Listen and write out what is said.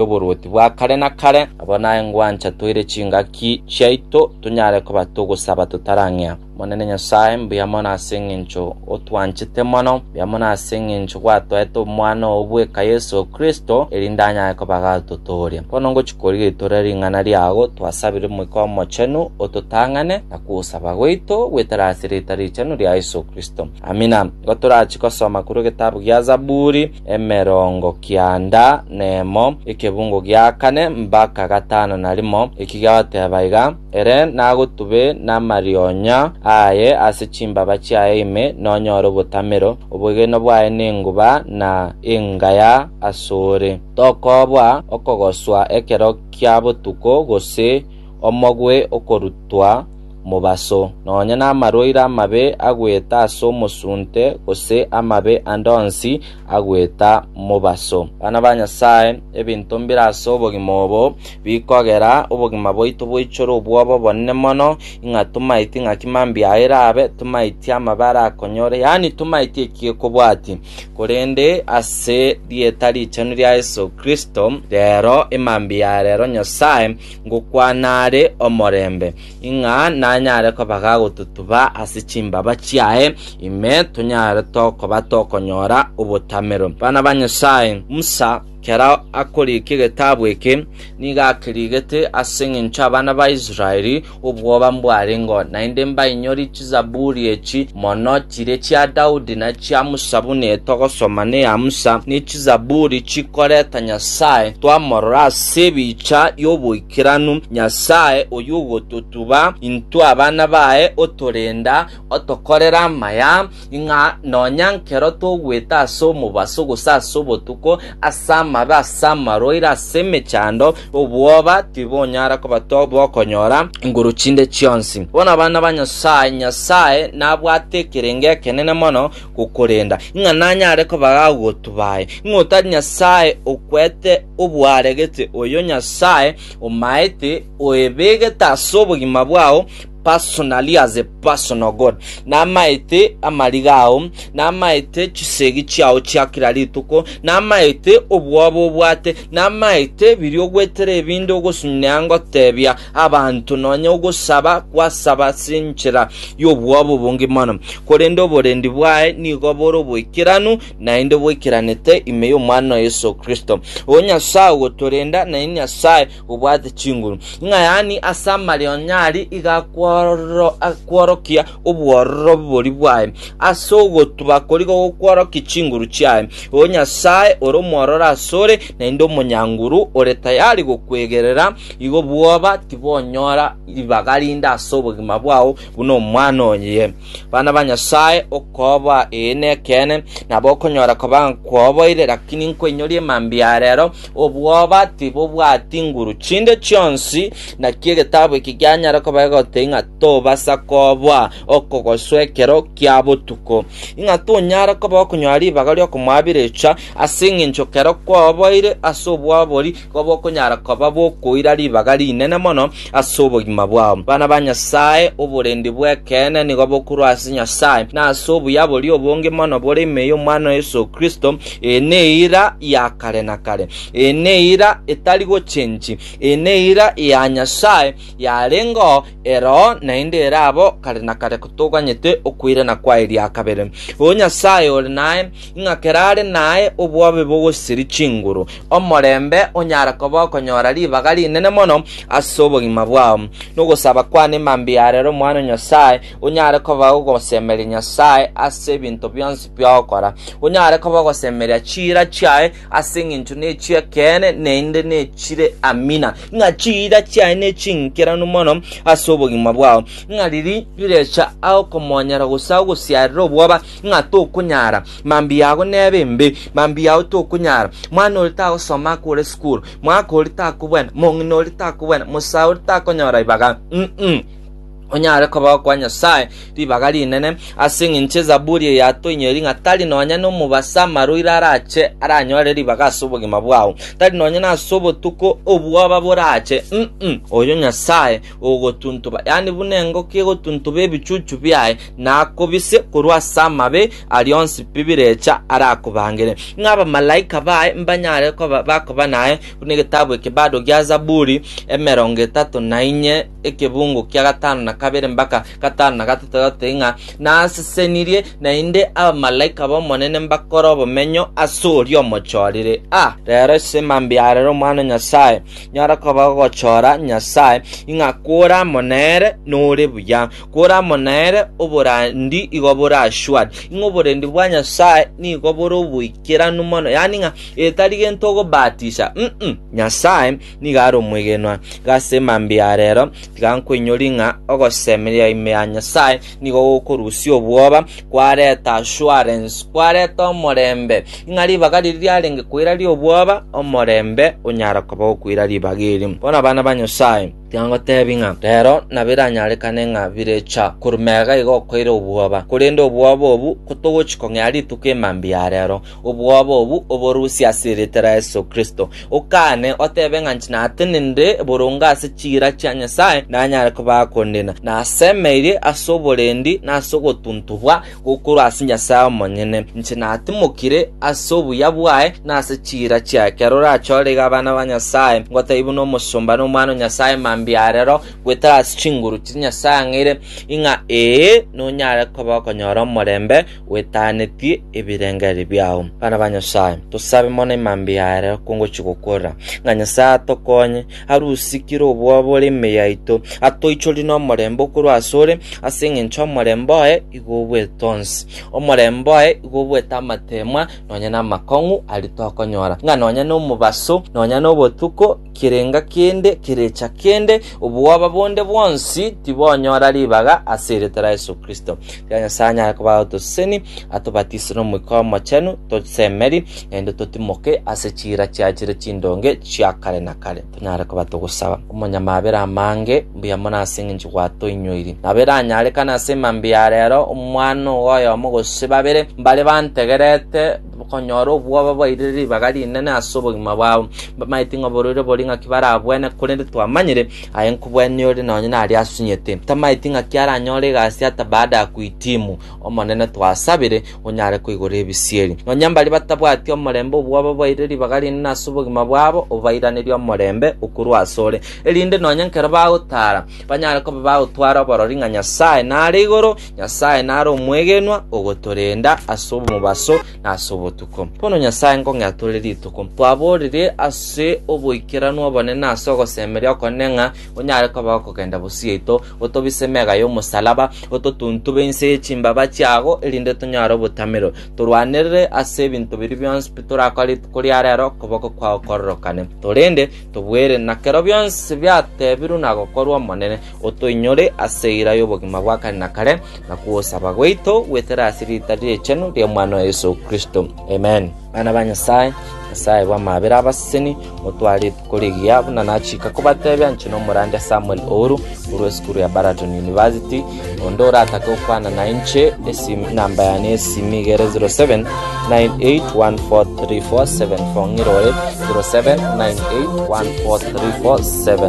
y'oborwoti bwa kare na kare. Abo naye ngwancha toire chingaki chiaito tonyare koba togosaba totarang'ea. Omonene Nyasae, mbuya mono ase engencho otwanchete mono, mbuya mono ase engencho gwatoete Omwana oo bweka Yeso Kristo, erinde anyare koba agatotooria. Bono ngochia korigetorera ring'ana riago, twasabire Omoika Omochenu ototang'ane na kogosaba gwaito goetera ase rieta richenu ria Yeso Kristo. Amina. Igo torachie gosoma korwa egetabu gia Zaburi. emerongo kianda nemo, ekebungo gia kane mbaka gatano na rimo, ekiga bateba iga, Ere nagotube namarionya aye ase chimbaba chiaye ime, nonyore obotamero, obwegenwa bwaye nenguba na engaya asore. Tokoba okogoswa ekero kia botuko, gose omogwe okorutwa, mobaso, nonya namarwaire amabe agoeta ase omosunte, gose amabe ande onsi agoeta mobaso. Abana ba Nyasae, ebinto mbire ase obogima obo bikogera obogima bwaito boichore obwoba obonene mono, ing'a tomaeti ng'aki mambia aya erabe, tomaeti amabe arakonyore, yaani tomaeti eki gekobwati. Korende ase rieta richenu ria Yeso Kristo, rero emambia ya rero Nyasae ngokwana are omorembe. ng'a nanyare kobaga agotutuba ase chimbaba chiaye, ime tonyare tokoba tokonyora obotamero. Bana ba Nyasae, Musa, kera akorigia egetabu eke, nigo akeriigete ase engencho y'abana ba Israeli, obwoba mbwarengeo. Naende mbainyori Chizaburi echi mono, chiria chia Daudi na chia Musa buna etogosoma neya Musa, ne Chizaburi chikoreta Nyasae twamorora ase ebicha y'oboikoreri. Kiranu Nyasae oyio ogototuba intwe abana baye otorenda, otokorera amaya, ng'a nonya nkero togwete ase omobaso gose ase obotuko, ase amabe, ase amarwaire, ase emechando, obwoba tibonyara koba bokonyora nguru chinde chionsi. Bono abana ba Nyasae, Nyasae nabwate ekerengo ekenene mono gokorenda, ng'a nanyare kobaga abaguotu baye, ng'a otari Nyasae okwete obwaregete oyo Nyasae omaete oebegete ase obogima bwao personally as a personal God, namaete amariga ao, namaete chisegi chiao chia kera rituko, namaete obwoba obwate, namaete biria ogwetera ebinde ogosunyia ngotebia, Abanto nonya ogosaba kwasaba ase enchera y'obwoba obonge mono, korende oborendi bwaye nigo bore oboikeranu, naende boikeranete ime y'Omwana oye Yeso Kristo. O Nyasae ogotorenda, naende Nyasae obwate chinguru. Ng'a yaani ase amareo onye aria iga akworo- akworokia obwororo bori bwaye, ase ogotuba koria gokworokia chinguru chiaye. O Nyasae, ore omwororo asore, naende omonyanguru, ore tayari gokwegerera, igo bwoba tibonyora ribaga rinde ase obogima bwao buna omwana oye. Bana ba Nyasae, okoba ee nekeene, nabo okonyora koba nkwoboire, lakini nkoinyoria emambia ya rero, obwoba tibobwati nguru chinde chionsi, naki egetabu eki gianyare koba egotei ng'a tobasa koboa okogoswa ekero kia botuko, ng'a tonyare koba okonyora ribaga ri'okomoabirecha, ase engencho kero kwaoboire ase obwabori koba okonyara koba bokoira ribaga rinene mono ase obogima bwao. Bana ba Nyasae, oborendi bw'ekeene nigo bokorwa ase Nyasae, na ase obuya boria obonge mono bore ime y'Omwana o Yeso Kristo, eye neira ya kare na kare, eye neira etari gochenchi, eye neira ya Nyasae, yarengeo eroo naende ere abo kare na kare kotoganyete okoirana kwaye ria kabere. O Nyasae ore naye, ng'a kera are naye obwabe bogosiria chinguru, omorembe onyare koba okonyora ribaga rinene mono ase obogima bwao, nogosaba kwane mambia ya rero Omwana o Nyasae onyare koba ogosemeria Nyasae ase ebinto bionsi biagokora, onyare koba ogosemeria chiira chiaye Ase engencho nechi'ekeene naende nechire amina, ng'a chiira chiaye nechinkeranu mono ase obogima bwao, ng'a riria rirecha agokomonyera gose agosiarere obwoba, ng'a tokonyara, mambia yago nebe embe, mambia yao tokonyara, mwana oria tagosoma akore sukuru, mwaka oria takobwena, mong'ina oria takobwena, mosae oria takonyora ribaga. Mm-mm. Onyare kobao kwa Nyasae ribaga rinene, ase engencho ezaburi eye yatoinyori ng'a tari nonya nomobasa amarwaire arache aranyore ribaga ase obogima bwao, tari nonya nase obotuko obwoba borache, mm, oyo Nyasae ogotuntuba, yaani buna engoko egotuntuba ebichuchu biaye, na akobise korwa ase amabe aria onsi pi birecha arakobangere. Ng'a abamalaika baye mbanyare koba bakoba naye, buna egetabu eke bado gia Zaburi emerongo etato na inye ekebungo kia gatano na kabere mbaka gatano na gatato gatote ng'a nasesenirie, naende abamalaika b'Omonene mbakore obomenyo ase oria omochorire. Ah, rero ase mambia arere omwana o Nyasae, nyora koba ogochora Nyasae, ing'a kore amo nere nore buya, kore amo nere oborandi igo bore ashwari, ing'a oborendi bwa Nyasae nigo bore oboikeranu mono, yaani ng'a etari gento ogobatisha, mm, Nyasae Nigo are omwegenwa, iga ase mambia ya reero tiga nkwainyorie ng'a ogosemeria ime ya Nyasae nigo gokorusia obwoba, kwareta assurance, kwareta omorembe. Ing'a ribaga riria riarenge koira ri'obwoba, omorembe onyara koba gokoira ribaga eri. Bono abana ba Nyasae, tiga ngoteebie ng'a reero nabo eranyarekane ng'a birecha korwa mega iga okoira obwoba, korende obwoba obwo kotogochia kong'ea rituko e mambia ya reero, Obwoba obu oborusie ase erieta ria Yeso Kristo, okaane, otebe ng'a inche natenenire boronge ase chiira chia Nyasae nanyare kobaa kondina. Nasemeirie ase oborendi na ase ogotuntubwa gokorwa ase Nyasae omonyene. Inche natimokire ase obuya bwaye na ase chiira chiaye. Ekero orachorerigwe abana ba Nyasae, ngotai buna omosomba na omwana o Nyasae mambia arero, gwetara ase chinguru chiria Nyasae ang'eire, ing'a ee, nonyare koba okonyora omorembe, gwetaanetie ebirengererio biao. Bana ba Nyasae, tosabe mono emambia ya aroro kongochia gokora, ng'a Nyasae atokonye, arusikire obwoba bore emei yaito, atoichorie nomorembe okorwa asore, ase engencho omorembe oye igo obwete onsi. Omorembe oye igo obwete amateemwa nonya namakong'u aria tokonyora, ng'a nonya nomobaso, nonya nobotuko, kerenga kende kerecha kende, obwoba bonde bwonsi tibonyora ribaga ase erieta ria Yesu Kristo. Tiga Nyasae anyare koba otoseseni, atobatise n'Omoika Omochenu, tosemeri, naende totimoke ase chiira chiaye chire chindonge chia kare na kare. Tonyare koba togosaba. Omonyamabera amange, mbuya mono ase eng'encho gwatoinyoiri. Nabo eranyarekane ase emambia ya rero, omwana ogo oyomo gose babere, mbare bantegerete, konyora obwoba bairire ribaga rinene ase obogima bwabo. Mbamaeti ng'a oborwaire bori ng'aki barabwene, korende twamanyire aye nkobwenia ore nonye naria asunyete. Tamaeti ng'aki aranyore egasi ata baada ya kuhitimu. Omonene twasabire onyare koigora ebisieri. Nonya mbaria batabwati omorembe obwoba bairire ribaga rinene ase obogima bwabo obairanerie omorembe okorwa asore, erinde nonye nkero bagotara banyare koba bagotwara oborori ng'a Nyasaye nare igoro Nyasae nare omwegenwa ogotorenda ase omobaso na ase obotuko. Bono Nyasae nkong'ea tore rituko, twaborire ase oboikeranu obonene na ase ogosemeria okonene ng'a onyare koba okogenda bosieito, otobise mega y'omosalaba, ototuntube inse ye chimbaba chiago, erinde tonyare obotamero, torwanerere ase ebinto biria bionsi pi torakore rituko ria rero, okoboko kwao kororokane. Torende, tobuere, na kero bionsi biatebirwe na gokorwa Omonene, Otoinyore ase eira y'obogima bwa kare na kare, na gosaba gwaito gwetere ase riita ri'richenu ri'Omwana oye Yeso Kristo. Amen. Bana ba Nyasae, Nyasae bw'amabera abaseseni, motware rituko rigiya, buna nachika kobatebia inche nomorande Samuel Ouru, korwa esukuru ya Baraton University, onde oratake gokwana nainche, esim- enamba yane y'esimi igere 0798143474, ng'irore 0798143474.